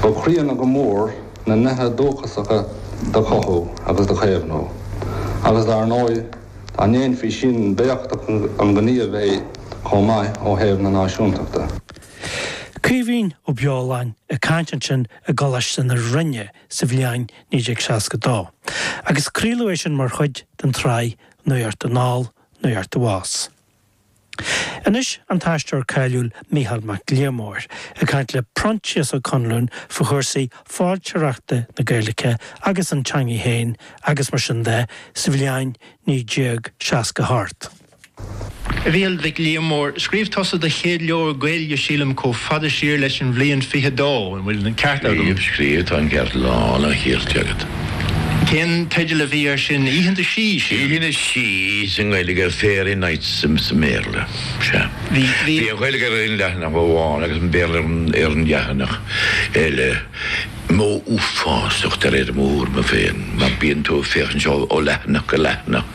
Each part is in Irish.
go críonna go mór na nithe dúchasacha do chothú agus do chaomhnú agus dar ndóigh dá ndéanfaí sin b'éachtach an gníomh é chomh maith ó thaobh na náisiúntachta. Caoimhín Ó Beoláin ag caint ansin i gColáiste na Rinne sa bhliain 1962 agus craoladh é sin mar chuid den tsraith Nuacht anall, Nuacht abhus. Anois an t-aisteoir cáiliúil Mícheál Mac Liammóir ag caint le Proinsias Ó Conluain faoi chúrsaí foilsitheoireachta na Gaeilge agus an teangaidh féin agus mar sin de sa bhliain 1960 thart. A Mhícheáil Mhic Liammóir, scríobh tusa do chéad leabhar Gaeilge, sílim, comh fada siar leis an bhliain 22. An bhfuil an ceart agam? Níl, scríobh, Tá an ceart lán an chirt agat. Cén teideal a bhí ar sin? Oícheanta Sí, sin? Oícheanta Sí sa nGaeilge ar Fairy Nights sa mBéarla, sea. Bhí an Ghaeilge ar aon leathanach amháin agus an Béarla ar an leathanach eile. Modh uafásach de réir m'thuairme féin mar bíonn tú ag féachaint ó leathanach go leathanach.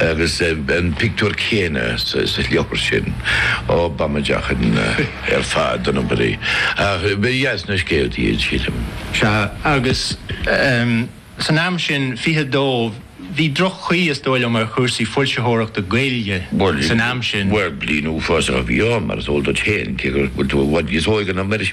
Agus an pictiúr céanna sa leabhar sin ó b'amaideach ar fad dona, a Mhuire. Ach ba dheas na scéaltaí iad, sílim. Sea, agus san am sin, 22, bhí droch-chaoi, is dóigh liom, ar chúrsaí foilsitheoireachta Gaeilge san am sin. Bhuel, bliain uafásach a bhí ann, mar is eol duit féin, cé go bhfuil tú i bhfad níos óige ná mise.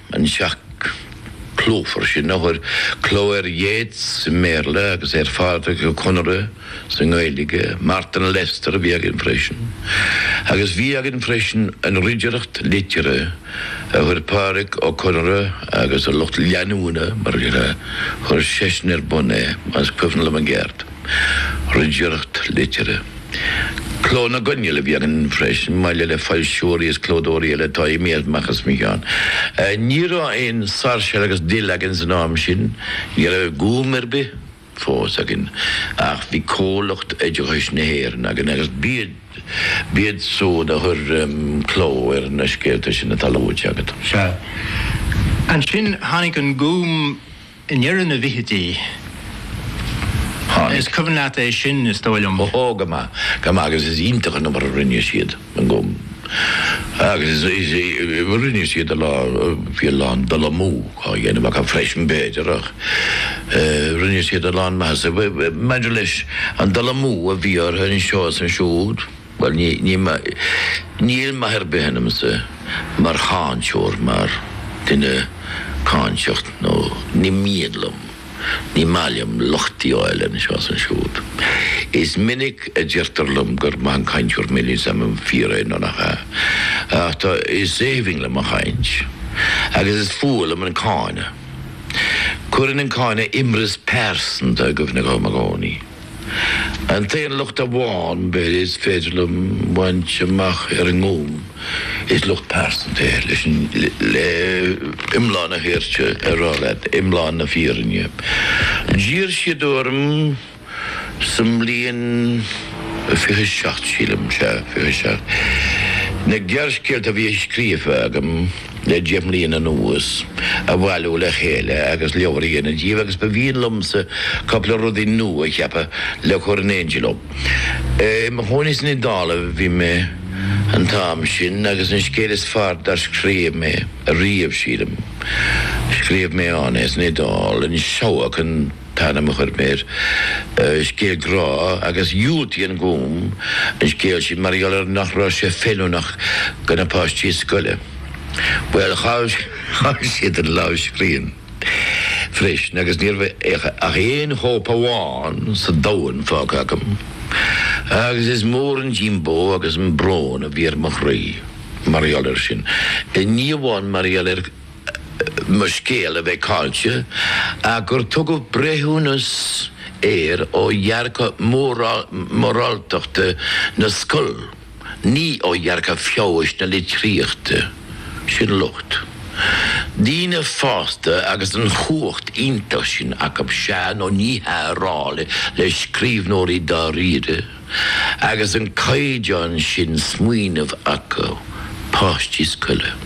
an teach clúmhar sin a chuir cló ar Yeats sa mBéarla agus ar Phádraic Ó Conaire sa nGaeilge, Martin Lester a bhí againn freisin. Agus bhí againn freisin an Ridireacht Liteartha a chuir Pádraic Ó Conaire agus a lucht leanúna mar a chuir seisean ar bun é, más cuimhin liom i gceart. Ridireacht Liteartha. Cló na gCoinneal a bhí againn freisin, maille le foilsitheoirí is clódóirí eile atá imithe amach as mo cheann. Ní raibh aon Sáirséal agus Dill againn san am sin, ní raibh Gúm ar bith fós againn, ach bhí Comhlucht Oideachais na hÉireann againn agus b'iad siúd a chuir cló ar na scéalta sin atá luaite agat. Sea. Ansin tháinig an Gúm. I ndeireadh na bhfichidí, tháinig. Is cuimhin leat é sin, is dóigh liom. Ó, go maith, go maith agus is iontach an obair a rinne siad. Agus rinne siad a lán, bhí a lán dul amú á dhéanamh acu freisin b'fhéidir ach rinne siad a lán maitheasa. Maidir leis an dul amú a bhí orthu anseo is ansiúd, Bhuel, ní, ní, níl maith ar bith ionamsa mar cháinteoir, mar dhuine cáinteach nó ní mian liom, ní maith liom locht a fháil anseo is ansiúd. Is minic a deirtear liom gur maith an cainteoir mé, níl 's a'm an fíor é nó nach ea, ach tá, is aoibhinn liom an chaint agus is fuath liom an cáineadh. Cuireann an cáineadh imreas pearsanta i gcuimhne dhom i gcónaí. An t-aon locht amháin, b'fhéidir, is féidir liom a bhaint amach ar an nGúm, is locht pearsanta é, leis, le iomlán na hairde a rá leat, iomlán na fírinne. D'iarr siad orm sa mbliain fiche seacht, sílim, sea, fiche seacht, na gearrscéalta a bhí scríofa agam, le deich mbliana anuas, a bhailiú le chéile agus leabhar a dhéanamh díobh agus ba mhian liomsa cúpla rud nua a cheapadh le cur in éindí leo. I mo chónaí san Iodáil a bhí mé an t-am sin agus an scéal is fearr dár scríobh mé riamh, sílim, scríobh mé ann é, san Iodáil, An Seabhac an. t-ainm a chuir mé air, scéal grá agus dhiúltaigh an Gúm an scéal sin mar gheall ar nach raibh sé feiliúnach do na páistí scoile. Bhuel, chaill siad an lámhscríbhinn freisin agus ní raibh ach aon chóip amháin sa domhan fágtha agam agus is mór an díombó agus an brón a bhí ar mo chroí mar gheall air sin, ní amháin mar gheall ar mo scéal a bheith caillte ach gur tugadh breithiúnas air ó dhearcadh moráltachta na scol, ní ó dhearcadh feabhais na litríochta. Sin locht. Daoine fásta agus an chumhacht iontach sin acu sea nó ní hea a rá le scríbhneoirí dáiríre agus an caighdeán sin smaoinimh acu. Páistí scoile.